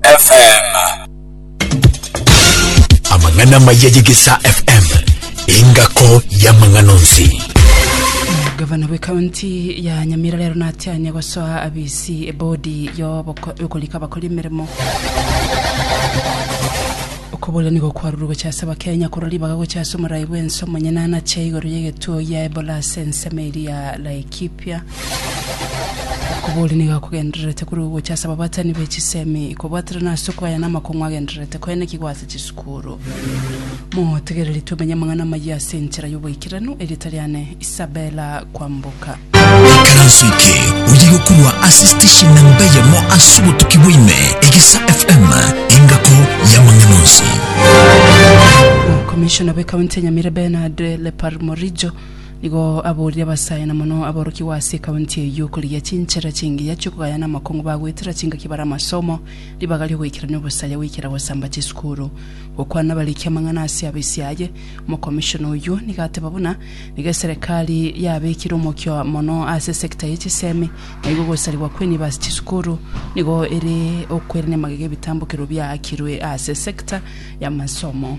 FM. Amang'ana maya y'Egesaa FM, engako y'amang'ana onsi. Gavana bw'ekaunti ya Nyamira rero natianye gosoa abisi ebodi y'oboko- y'okorika abakori emeremo okoborera nigo kwarurwe gocha ase abakenya korwa ribaga gocha ase omorai bw'ense omonyene anache igoro y'egetuo gia ebola ase ensemo eria ya laikipia Okobori nigo akogendererete korwa ogocha ase ababatani be chisemi, kobwaterana ase okwaya na amakong'u agendererete koenekigwa ase chisukuru. Motegereri tomenye amang'ana amayia ase enchera y'oboikeranu, erieta riane Isabella Kwamboka. Ikaranso eke oye gokorwa ase station namba eyemo ase obotuki bwaime egesa FM engako y'amang'ana onsi. Omokomishona bw'ekaunti ya Nyamira Bernard Leparmorijo Nigo aborire abasaayana mono aborokigwa ase ekaunti eyio korigia chinchera chingiya chi'okogaya na amakong'u bagwetera chingaki bare amasomo, ribaga ri'ogoikerania obosaya goikera gosamba chisukuru. Gokwana abariki amang'ana ase afisi aye, omokomishona oyio nigo ateba buna nigo eserekari yabekire omokia mono ase sector ye chisemi, naigo ogosarigwa kw'enibo ase chisukuru nigo ere okwerenia magega ebitambokero biaakirwe ase sector y'amasomo.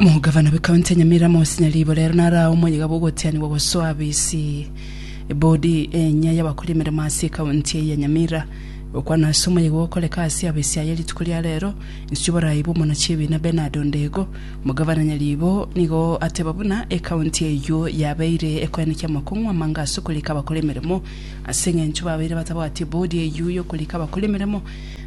Omogavana bw'Ekaunti ya Nyamira Amos Nyaribo rero naro aye omoyiga bw'ogotianigwa gosoa abisi ebodi enya y'abakora emeremo ase ekaunti eye ya Nyamira. Gokwana ase omoyiga okoreka ase abisi aye rituko ria rero inse borai bw'omona chiebina Bernard Ondego, omogavana Nyaribo nigo ateba buna ekaunti eyio yabeire ekoenekia amakong'u amange ase okorika abakora emeremo ase engencho babeire batabwati ebodi eyio y'okorika abakora emeremo.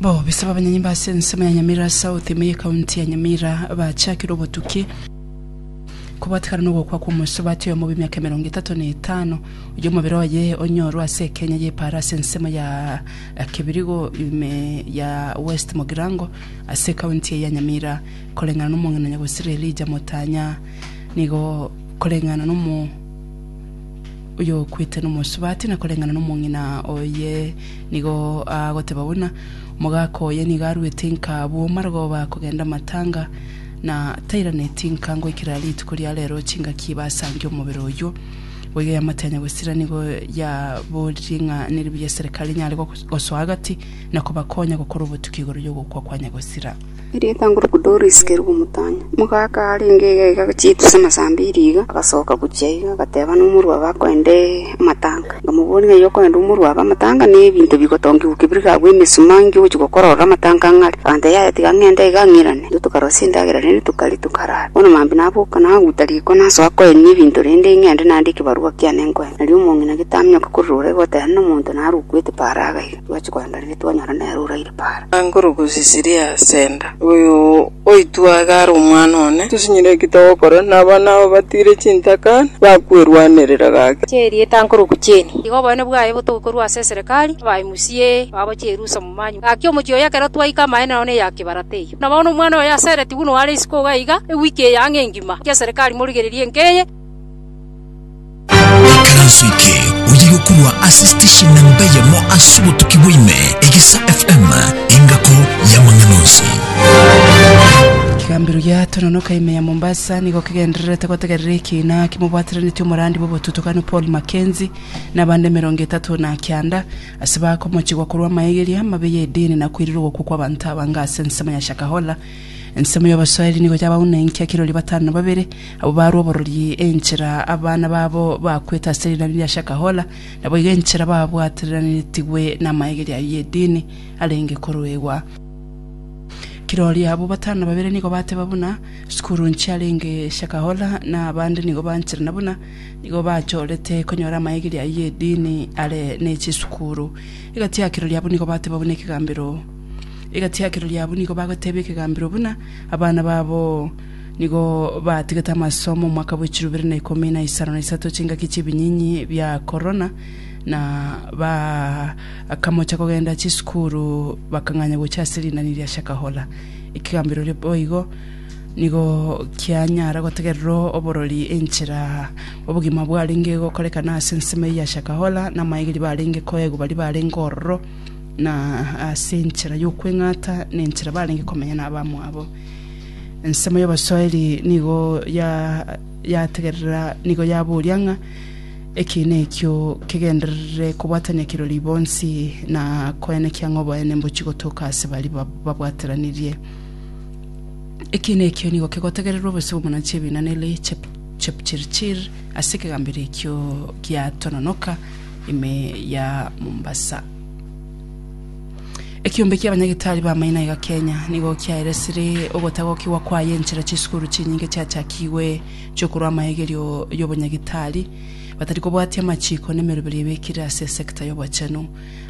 Bobisa b'abanyanyimba ase ensemo ya Nyamira South, ime y'Ekaunti ya Nyamira, bachakire obotuki kobwatekana nogokwa kw'omosubati oyomo bw'emiaka emerongo etato na etano, oyio omobere oye onyorwe ase ekenya y'Epara ase ensemo ya Kibirigo ime ya West Mogirango ase ekaunti eye ya Nyamira. Koreng'ana n'omong'ina Nyagosiri Elijah Motanya nigo koreng'ana nomo oyokwete nomosubati na koreng'ana nomong'ina oye nigo agoteba buna omogaka oye nigo aruete nka abwo marogoba akogenda amatanga na tairaneti nka ngoikera rituko ria rero chingaki basange omobere oywo boiga yamate ya nyagosira nigo yaborie ng'a neribuya eserekari nyare gosoa agati na kobakonya gokora obotuki igoro yogokwa kwa nyagosira Erietang'uruku Doris Kerubo Mutanya, omogaka arenge egega chitu ase amasambi e riga, agasoka gochia iga, agateba nomorwabe akoende amatanga. Nkamobooria ng'a, Inye okoenda omorwabe amatanga na ebinto bigotongigwa gokia bire gakwa emesuma inki ogochia gokora ororo amatanga ang'e are? Aganteba, Yaya tiga ng'ende iga ng'irane. Intwe tokarosia endagera rende tokaria tokarara. Bono maambia naboka nagaguta riko nasoa koenia ebinto rende ng'ende naandike ekebarua kiane nkoe. Nario omong'ina gete aminyoka korora ore goteba nomonto naro okwete paraga iga. Twachia koenda riria twanyora nere oraire para. Angoro gosisiria Senda, oyo oitwe iga are omwana one. Tosinyire ki togokora, na abana abo batiire chintaka, bakwerwanerera gake. Chia erieta nkoruku chieni. Iga obonene bwaye botoke korwa ase eserekari, abae musie, babo chierusa momanyu. Gaki omochie oyo ekero twaika amaene nao neya kibarata eyio. Na bono omwana oyo asereti buna oare isiko iga iga, ewiki eye ang'e engima, gaki eserekari morigererie enka eye. Ekeranso eke oye gokorwa ase station namba eyemo ase obotuki bwa ime, Egesa FM, engako y'amang'ana onsi. Ekegambero gia Tononoka ime ya Mombasa nigo kegendererete gotegerera ekiina kimobwataneretie omorandi bw'obotutukani Paul Mackenzie na abande emerongo etato na kianda ase bakomochigwa korwa amaegeria amabe y'edini na koirirwa ogokwa kw'abanto abange ase ensemo ya Shakahola. Ensemo y'Abaswahili nigo yabauna enki ekirori batano na babere Abwo barue oborori enchera abana babo bakwete ase rinani ria Shakahola, naboigo enchera babwatereranetigwe namaegeri ayio y'edini arenge koroegwa. Kirori abwo batano na babere nigo bateba buna Sukuru nchiarenge Shakahola, na abande nigo banchera na buna nigo bachorete konyora amaegeri ayio y'edini are nechisukuru. Egati ya kirori abwo nigo bateba buna ekegambero Egati ya kirori abwo nigo bagotebia ekegambero buna abana babo Nigo batigete amasomo omwaka bwe chirobere na ikomi na isano na isato chingaki chi'ebinyinyi bia korona, na bakamocha kogenda chisukuru bakang'anya gocha ase rinani ria Shakahola. Ekegamberero boigo nigo kianyara gotegererwa oborori enchera obogima bwarenge gokorekana ase ensemo eyio ya Shakahola, na amaegeri barenge koegwa baria barenge ororo, na ase enchera y'okweng'ata, na enchera barenge komenya nabamwabo. Ensemo y'Abaswahili nigo ya yategerera nigo yaboria ng'a ekiina ekio kegenderere kobwatania kirori bonsi na koenekia ng'a oboene mbochi gotoka ase bari bab- babwateranirie. Ekiina ekio nigo kegotegererwa obose bw'omonanchi ebiina nere chep Chepchirchir ase ekegambero ekio gia Tononoka ime ya Mombasa. Ekiombe kia abanyagitari b'amaino aiga Kenya nigo kiaeresire ogotagokigwa kwaye enchera chisukuru chinyinge chiachakigwe chiokorwa amaegerio y'obonyagitari batari kobwatia amachiko nemeroberi ebekire ase esecta y'obochenu.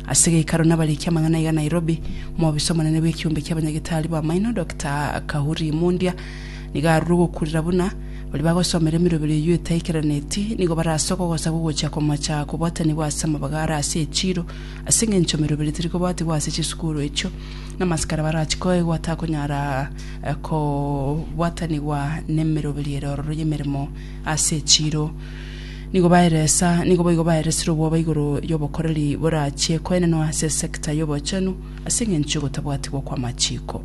Ase geikaro nabarikia amang'ana aiga Nairobi, omobisa omonene bw'ekiombe kia abanyagitari b'amaino Doctor Kahuri Mundia nigo arure ogokurera buna baria bagosomera emeroberi eyio etaikeranieti nigo barasoka ogosaga ogochia komocha kobwatanigwa ase amabagare ase echiro Ase engencho meroberi teri kobatigwa ase chisukuru echio, na amasikara barachikoegwa atakonyara kobwatanigwa nemeroberi ere ororo y'emeremo ase echiiro. Nigo baeresa, nigo boigo baeresire obwoba igoro y'obokoreri borachie koenenwa ase esecta y'obochenu ase engencho y'ogotabwatigwa kw'amachiko.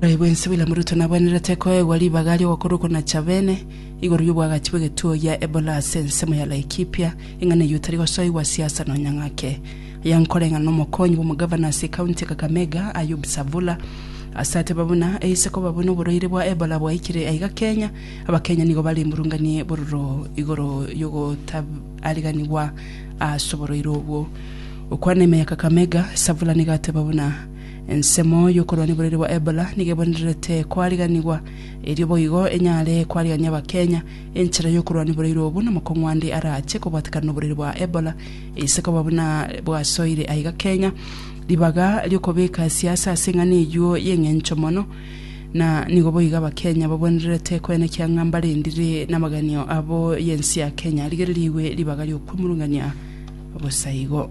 Naboigo inse William Ruto nabwenerete koegwa ribaga ri'ogokorokwa na Chabene igoro y'obwagachi bw'egetuo gia Ebola ase ensemo ya Laikipia, ing'ana eyio tari gosoigwa siasa nonya ng'ake. Aya nkoreng'ana n'omokonyi bw'omogavana ase County ya Kakamega, Ayub Savula, ase ateba buna aise koba buna oborwaire bwa Ebola bwaikire aiga Kenya, Abakenya nigo bare mburungani bororo igoro y'ogotaariganigwa ase oborwaire obwo. Gokwana ime ya Kakamega, Savula nigo ateba buna. Ensemo y'okorwa neboriri bwa Ebola nigo ebonererete kwariganigwa, erio boigo enyare kwarigania Abakenya enchera y'okorwa neboreiri obo namakong'u ande arache kobwatekana noboriri bwa Ebola eise koba buna bwasoire aiga Kenya. Ribaga ri'okobeka siasa ase eng'ana eyio y'eng'encho mono na nigo boigo Abakenya babonererete koenekia ng'a mbarendire namaganio abo y'ense ya Kenya arigererigwe ribaga ri'okwemurungania bosa igo.